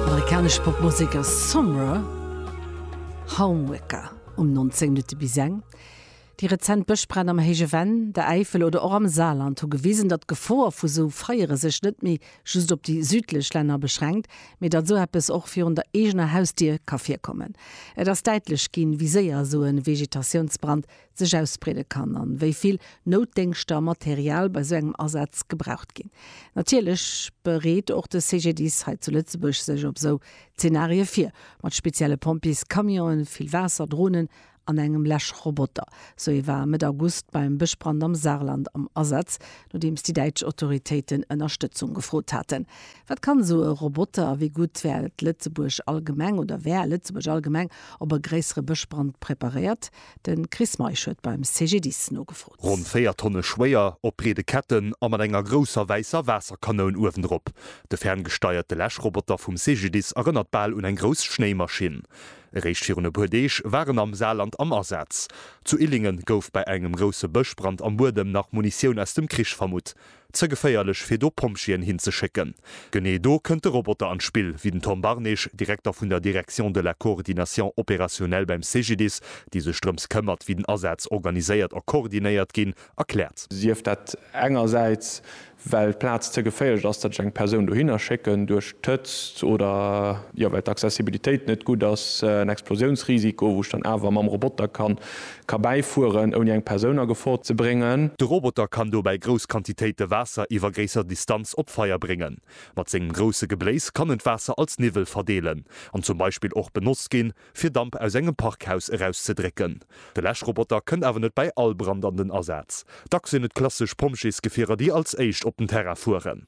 Amerikanesch Popmusek ass Summer Homeworker um 19 Minutte bis eng. Déi rezent Bëschbränn am Héije Venn, der Äifel oder och am Saarland hu gewisen, datt d'Gefor vu sou Feiere sech net méi just op déi südlech Länner beschränkt, mee datt sou eppes och virun der eegener Hausdier ka virkommen. Et ass däitlech ginn, wéi séier sou e Vegetatiounsbrand sech ausbreede kann an wéi vill Noutdéngschter a Material bei sou engem Asaz gebraucht ginn. Natierlech bereet och de CGDIS hei zu Lëtzebuerg sech op sou Zenarie vir, mat spezielle Pompjeescamionen, vill Waasser, Dronen an engem Läschroboter. Sou ee war Mëtt August beim Bëschbrand am Saarland am Asaz, nodeems déi däitsch Autoritéiten Ënnerstëtzung gefrot haten. Wat kann sou e Roboter a wéi gutt wäert Lëtzebuerg allgemeng oder wär Lëtzebuerg allgemeng op e gréissere Bëschbrand preparéiert? De Chris Meisch huet beim CGDIS nogefrot. Ronn 4 Tonne schwéier, op breede Ketten a mat enger grousser wäisser Waasserkanoun uewendrop. De ferngesteierte Läschroboter vum CGDIS erënnert bal un eng grouss Schnéimaschinn. Eréischt virun e puer Deeg war en am Saarland am Asaz. Zu Illingen gouf bei engem grousse Bëschbrand am Buedem nach Munitioun aus dem Krich vermutt. Ze geféierlech fir do Pompjeeën hin ze schécken. Genee do kënnt de Roboter an d'Spill, wéi den Tom Barnage, Direkter vun der Direction de la coordination opérationnelle beim CGDIS, déi sech drëms këmmert, wéi den Asaz organiséiert a koordinéiert ginn, erkläert. Sief dat engersäits, well d'Plaz ze geféierlech ass, datt ech eng Persoun dohinner schécken, duerch d'Hëtzt oder, jo, well d'Accessibilitéit net gutt ass, en Explosiounsrisiko, wou ech dann awer mam Roboter kann Ka bäifueren, ouni eng Persoun a Gefor ze bréngen. De Roboter kann dobäi grouss Quantitéite Waasser iwwer gréisser Distanz op d'Feier bréngen. Mat sengem grousse Gebléis kann en d'Waasser als Niwwel verdeelen an zum Beispill och benotzt ginn, fir Damp aus engem Parkhaus erauszedrécken. De Läschroboter kënnt awer net bäi all Brand an den Asaz. Dacks sinn et klassesch Pompjeesgefierer, déi als éischt op den Terrain fueren.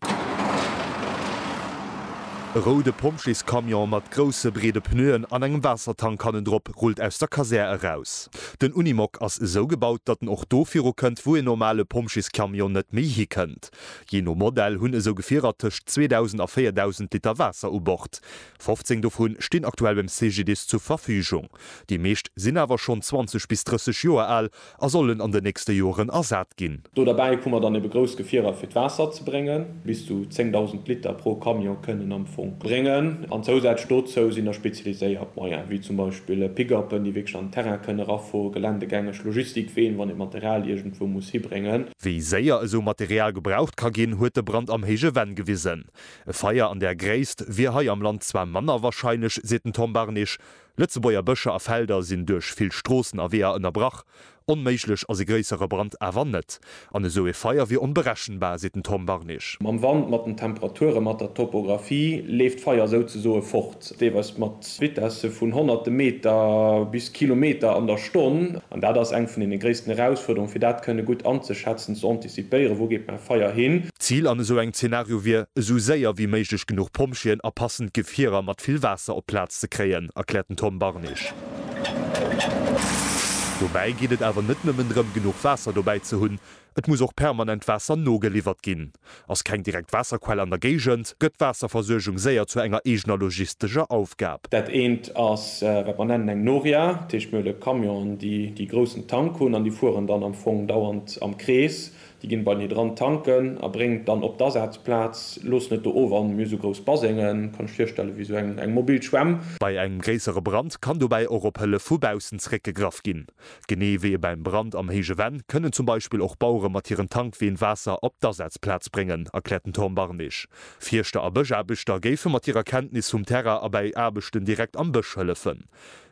E roude Pompjeescamion mat grousse, breede Pneuen an engem Waassertank hannendrop rullt aus der Kasär eraus. Den Unimog ass esou gebaut, datt en och do virukënnt, wou een normale Pompjeescamion net méi hikënnt. Jee no Modell hunn esou Gefierer tëscht 2.000 a 4.000 Liter Waasser u Bord. 15 dovu stinn aktuell beim CGDIS zur Verfügung. Déi meescht sinn awer schonn 20 bis 30 Joer al A sollen an den nächste Joren ersat ginn. Do derbäi hu mer dann ebe grouss Gefierer fir d'Waasser ze bréngen. Bis zu 10.000 Liter pro Camion kënnen am Fong bréngen. An zousätzlech dozou sinn da spezialiséiert Moyen, wéi zum Beispill Pick-upen, déi wierklech an den Terrain kënnen erafueren, geländegängeg Logistikween, wann ee Material iergendwou muss hibréngen. Wéi séier esou Material gebraucht ka ginn, huet de Brand am Héije Venn gewisen. E Feier an där Gréisst wier hei am Land zwar manner warscheinlech, seet den Tom Barnich, Lëtzebuerger Bëscher a Felder sinn duerch vill Stroossen a Weeër ënnerbrach. Onméiglech ass e gréissere Brand awer net. An esou e Feier wier onberechenbar, seet den Tom Barnig. Mam Wand, mat den Temperature, mat der Topographie leeft d'Feier souzesoe fort, deelweis mat Vitesse vun honnerte Meter bis Kilometer an der Stonn. An dat ass eng vun deene gréissten Erausfuerderunge fir dat kënne gutt anzeschätzen, ze anticipieren. Si d'Déiere, wou geet mäi Feier hin? D'Zil an esou engem Zenario wier, esou séier wéi méiglech genuch Pompjeeën a passend Gefierer mat vill Waasser op d'Plaz ze kréien, erkläert den Tom Barnich. Dobäi geet et awer net nëmmen drëm, genuch Waasser dobäi ze hunn, et muss och permanent Waasser nogeliwwert ginn. Ass keng direkt Waasserquell an der Géigend, gëtt d'Waasserversuergung séier zu enger eegener logistescher Aufgab. Dat eent ass, wat mer nennen eng Noria, dat heescht, mir hunn e Camion, déi déi groussen Tank hunn an déi fueren dann am Fong dauernd, am Krees, déi ginn bei mir dran tanken a bréngen et dann op d'Asazplaz, loossen et do of an mir hu sou grouss Basengen, kann lech virstellen, wéi sou eng mobil Schwämm. Bei engem gréissere Brand kann dobäi och op Hëllef vu baussen zeréckgegraff ginn. Genee wéi beim Brand am héije Venn kënnen zum Beispill och Bauere mat hiren Tankween Waasser op d'Asazplaz bréngen, erkläert den Tom Barnich. Fierschter a Bëschaarbechter géife mat hirer Kenntnis vum Terrain a bäi Aarbechten direkt am Bësch hëllefen.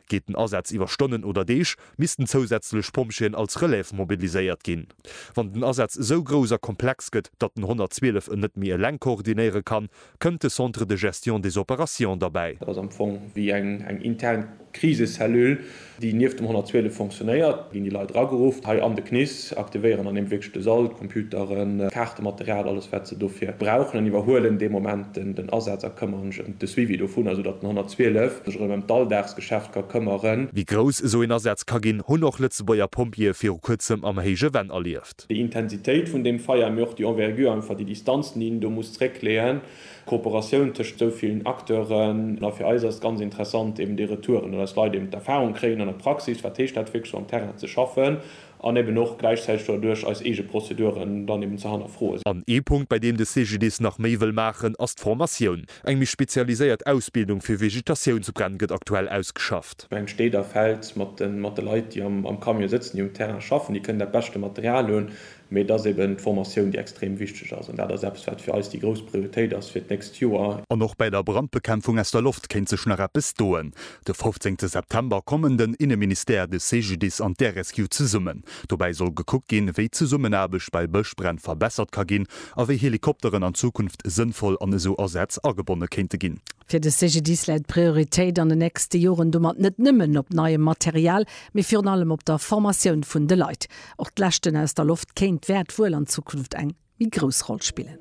Geet den Asaz iwwer Stonnen oder Deeg, missten zousätzlech Pompjeeën als Relève mobiliséiert ginn. Wann den Asaz esou grouss a komplex gëtt, datt den 112 en net méi eleng koordinéiere kann, kënnt de Centre de gestion des opérations derbäi. Dat ass am Fong wéi eng intern Krisecellule, déi nieft dem 112 fonctionnéiert. Do ginn déi Leit erageruff, hei an de CNIS. aktivéieren an deem wierklech de Sall, d'Computeren, d'Kaartematerial, alles wat se dofir brauchen an iwwerhuelen dee Moment den Asaz a këmmeren sech ëm de Suivi dovun, esou datt den 112 sech erëm ëm d'Alldagsgeschäft ka këmmeren. Wéi grouss esou een Asaz ka ginn, hunn och Lëtzebuerger Pompjeeë viru kuerzem am héije Venn erlieft. Déi Intensitéit vun deem Feier, mee och déi Envergure, einfach déi Distanzen, déi een do muss zréckleeën, d'Kooperatioun tëscht esou villen Acteuren. A fir eis ass et ganz interessant, eben déi Retouren, datt eis Leit eben d'Erfahrung kréien an der Praxis, wat heescht dat wierklech sou am Terrain ze schaffen, An eben och gläichzäiteg doduerch eis eege Prozeduren dann eben ze hannerfroen. An ee Punkt, bei deem de CGDIS nach méi wëll maachen, ass d'Formatioun. Eng méi spezialiséiert Ausbildung fir Vegetatiounsbränn gëtt aktuell ausgeschafft. Eng steet a fält mat de Leit, déi am Camion sëtzen, déi um Terrain schaffen, déi kënnen dat beschte Material hunn. Mee et ass eben d'Formatioun, déi extrem wichteg ass. An dat ass eppes, wat fir eis déi grouss Prioritéit ass fir d'nächst Joer. An och bäi der Brandbekämpfung aus der Loft kéint sech nach eppes doen. De fofzéngte September kommen den Inneministère, de CGDIS an d'RSQ zesummen. Dobäi soll gekuckt ginn, wéi d'Zesummenaarbecht bei Bëschbränn verbessert ka ginn a wéi Helikopteren an Zukunft sënnvoll an esou Asätz agebonne kéinte ginn. Fir de CGDIS läit d'Prioritéit an den nächste Joren domat net nëmmen op neiem Material, mee virun allem op der Formatioun vun de Leit. Och d'Leschten aus der Loft kéint wäert wuel an Zukunft eng méi grouss Roll spillen.